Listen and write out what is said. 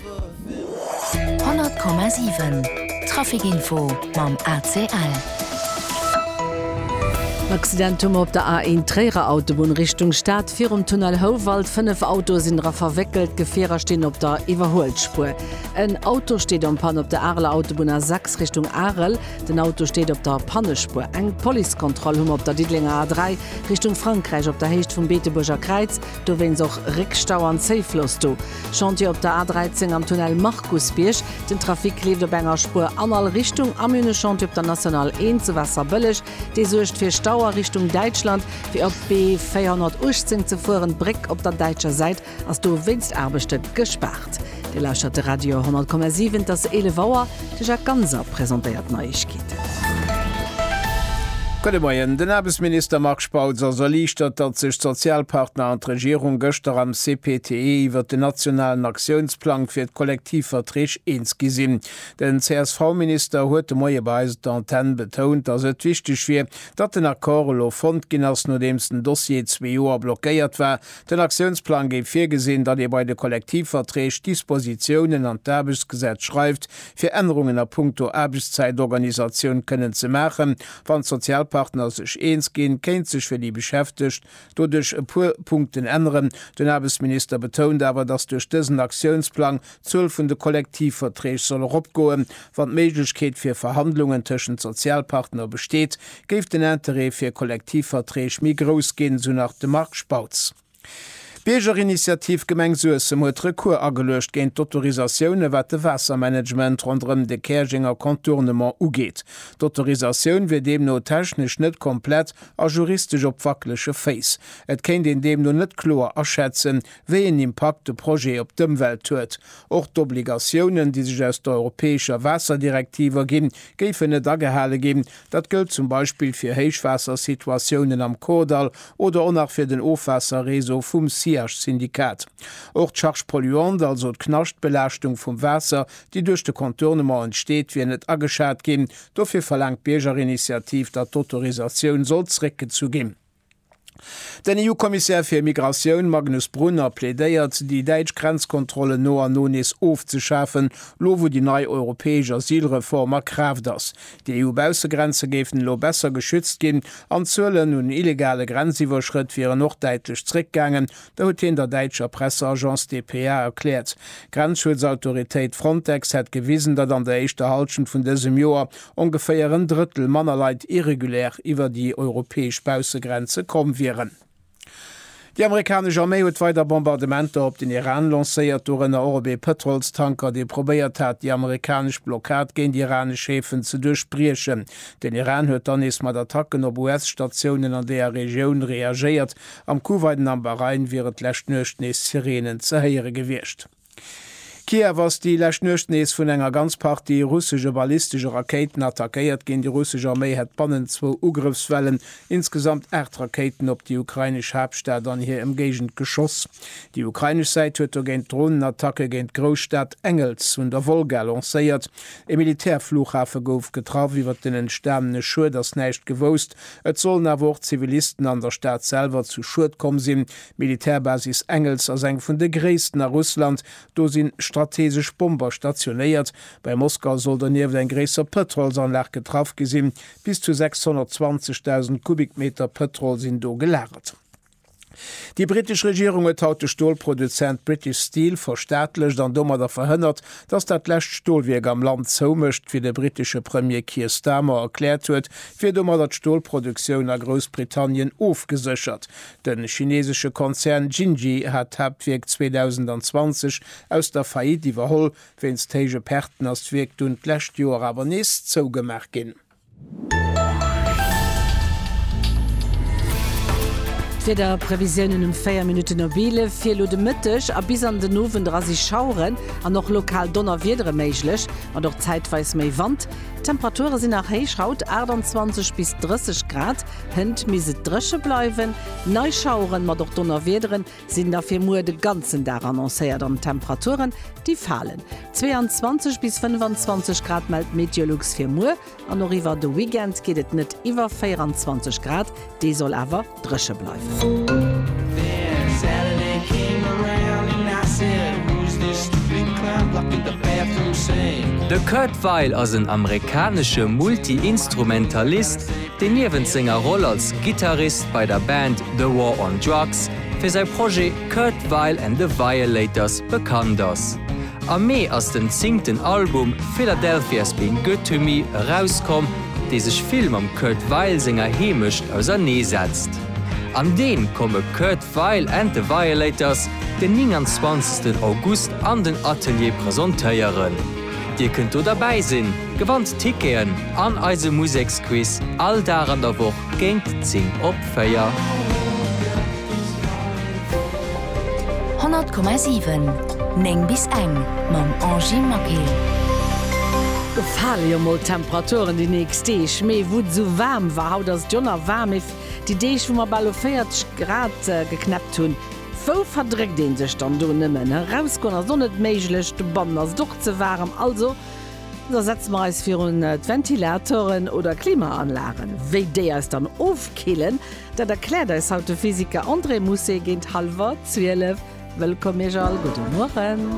100,7 Trafic-Info mam ACL. En Accident hu mer op der A1 Tréierer Autobunn Richtung Stad. Virum Tunnel Houwald, 5 Autoe sinn dra verwéckelt, d'Gefierer stinn op der Iwwerhuelspuer. En Auto steet en Panne op der Areler Autobunn A6 Richtung Arel. Den Auto steet op der Pannespuer. Eng Policekontroll hu mer op der Diddelenger A3 Richtung Frankräich op der Héicht vum Beetebuerger Kräiz. Dowéinst och Réckstau an Zéifloss do. Chantier op der A13 am Tunnel Markusbierg. Den Trafic leeft op enger Spuer an all Richtung. Am Une Chantier op der National 1 zu Wasserbëlleg. Dee suergt fir Stau a Richtung Däitschland. Fir op d'B 418 ze fueren, d'Bréck op der däitscher Säit ass dowéinst Aarbechte gespaart. Dir lauschtert de Radio 10,7, et ass 11 Auer. De Jacques Ganser presentéiert d'Neiegkeeten. Gudde Moien. Den Aarbechtsminister Marc Spautz ass erliichtert, datt sech d'Sozialpartner an d'Regierung gëschter am CPTE iwwert den nationalen Aktiounsplang fir d'Kollektivverträg eens gi sinn. Den CSV-Minister huet de Moie bei eis op der Antenn betount, datt et wichteg wier, datt den Accord elo fonnt ginn ass, nodeems den Dossier zwee Joer blockéiert war, Den Aktiounsplang géif virgesinn, datt ee bei de Kollektivverträg d'Dispositiounen an d'Aarbechtsgesetz schreift, fir Ännerungen a puncto Aarbechtszäitorganisatioun kënnen ze maachen. Wann d'Sozialpartner sech eens ginn, kéint sech fir déi Beschäftegt doduerch e puer Punkten änneren. Den Aarbechtsminister betount awer, datt duerch dësen Aktiounsplang D'Zuel vun de Kollektivverträg soll eropgoen, wann d'Méiglechkeet fir Verhandlungen tëschent Sozialpartner besteet, géif den Interêt fir Kollektivverträg méi grouss ginn, esou nach de Marc Spautz. D'Biergerinitiativ Gemeng Suessem huet Recours ageluecht géint d'Autorisatioune wat de Waassermanagement ronderëm de Käerjenger Contournement ugeet. D'Autorisatioun wier deemno technesch net komplett a juristesch op wackelege Féiss. Et kéint een deemno net kloer aschätzen, wéi een Impakt de Projet op d'Ëmwelt huet. Och d'Obligatiounen, déi sech aus der europäescher Waasserdirektiv erginn, géifen net agehale ginn. Dat gëllt zum Beispill fir Héichwaassersituatiounen am Kordall oder och nach fir den Ofwaasserreseau vum SIACH-Syndikat. Och d'Charge polluante, also d'Knaschtbelaaschtung vum Waasser, déi duerch de Contournement entsteet, wier net ageschat ginn. Dofir verlaangt d'Biergerinitiativ, datt d'Autorisatioun soll zréckgezu ginn. Den EU-Kommissär fir Migratioun Magnus Brunner plädéiert, déi däitsch Grenzkontrollen no an no nees ofzeschafen, lo wou déi nei europäesch Asylreform a Kraaft ass. Déi EU-Baussegrenze géifen elo besser geschützt ginn an d'Zuelen un illegale Grenziwwerschrëtt wieren och däitlech zréckgaangen. Dat huet hien der däitscher Presseagence dpa erkläert. D'Grenzschutzautoritéit Frontex hätt gewisen, datt an der éischter Hallschent vun dësem Joer ongeféier en Drëttel manner Leit irregulär iwwer déi europäesch Baussegrenze komm wieren. Déi amerikanesch Arméi huet weider Bombardementer op den Iran lancéiert, dorënner och op ee Pëtrolstanker, dee probéiert hat, déi amerikanesch Blockad géint iranesch Häfen ze duerchbriechen. Den Iran huet dann nees mat Attacken op US-Statiounen an deeër Regioun reagéiert. Am Kuwait an am Bahrain wiere d'lescht Nuecht nees Sireenen ze héiere gewiescht. Kiew ass déi lescht Nuecht nees vun enger ganz Partie russesche ballistesche Rakéiten attackéiert ginn. Déi russesch Arméi hätt bannent zwou Ugrëffswellen insgesamt aacht Rakéiten op déi ukrainesch Haaptstad an hir Emgéigend geschoss. Déi ukrainesch Säit huet dogéint Dronenattacke géint d'Grousstad Engels un der Wolga lancéiert. E Militärflughafe gouf getraff. Iwwer den entstanene Schued ass näischt gewousst. Et sollen awer och Zivilisten an der Stad selwer zu Schued komm sinn, D'Militärbasis Engels ass eng vun de gréissten a Russland. Do si strateesesch Bomber stationéiert. Bei Moskau soll donieft eng gréisser Pëtrolsanlag getraff gi sinn. Bis zu 620.000 Kubikmeter Pëtrol sinn do gelagert. Déi brittesch Regierung huet haut de Stolproduzent British Steel verstaatlecht an domadder verhënnert, datt dat lescht Stolwierk am Land zoumécht, wéi de brittesche Premier Keir Starmer erkläert huet, wier domadder d'Stolproduktioun a Groussbritannien ofgeséchert. De chinesesche Konzern Jinji hat d'Haaptwierk 2020 aus der Faillite iwwerholl. Wéinst héije Perten ass d'Wierk dunn d'lescht Joer awer nees zougemaach ginn. D'Wiederprevisiounen um 4 Minutten op 11 fir elo de Mëtteg a bis an den Owend era si Schaueren an och lokal Donnerwiedere méiglech, mat och zäitweis méi Wand. D'Temperature sinn nach héich, haut 28 bis 30 Grad. Hënt misst et dréche bleiwen. Nei Schaueren, mat och Donnerwiederen, sinn da fir muer de ganzen Dag annoncéiert an d'Temperaturen, déi falen. 22 bis 25 Grad mellt d'Meteolux fir muer an och iwwer de Weekend geet et net iwwer 24 Grad. Dee soll awer dréche bleiwen. De Kurt Weill ass en amerikanesche Multi-Instrumentalist, deen niewent senger Roll als Gittarist bei der Band The War on Drugs fir säi Projet Kurt Weill and the Violators bekannt ass. Am Mee ass den zéngten Album Philadelphia's Been Good to Me erauskomm, dee sech vill mam Kurt Weill senger Heemecht ausernee setzt. An deen komme Kurt Weill and the Violators den 29 August an den Atelier presentéieren. Dir kënnt do derbäi sinn, gewannt Ticketen an eise Museksquiz all Dag an der Woch géint 10 op 4. 100,7 9 bis eng mam Angy Maquet. Gefale jo mol d'Temperaturen déi nächst Deeg, mee wou et esou waarm war, haut ass et jo nach waarm, mee déi Deeg wou mer bal u 40 Grad geknäppt hunn, Wou verdréckt een sech dann do nëmmen? Erausgoen ass och net méiglech, dobannen ass et och ze waarem. Also, da setze mer eis virun d'Ventilatoren oder Klimaanlagen. Wéi déi eis dann ofkillen, dat erkläert eis haut de Physiker André Mousset géint hallwer 12. Wëllkomm Iech all, gudde Mueren.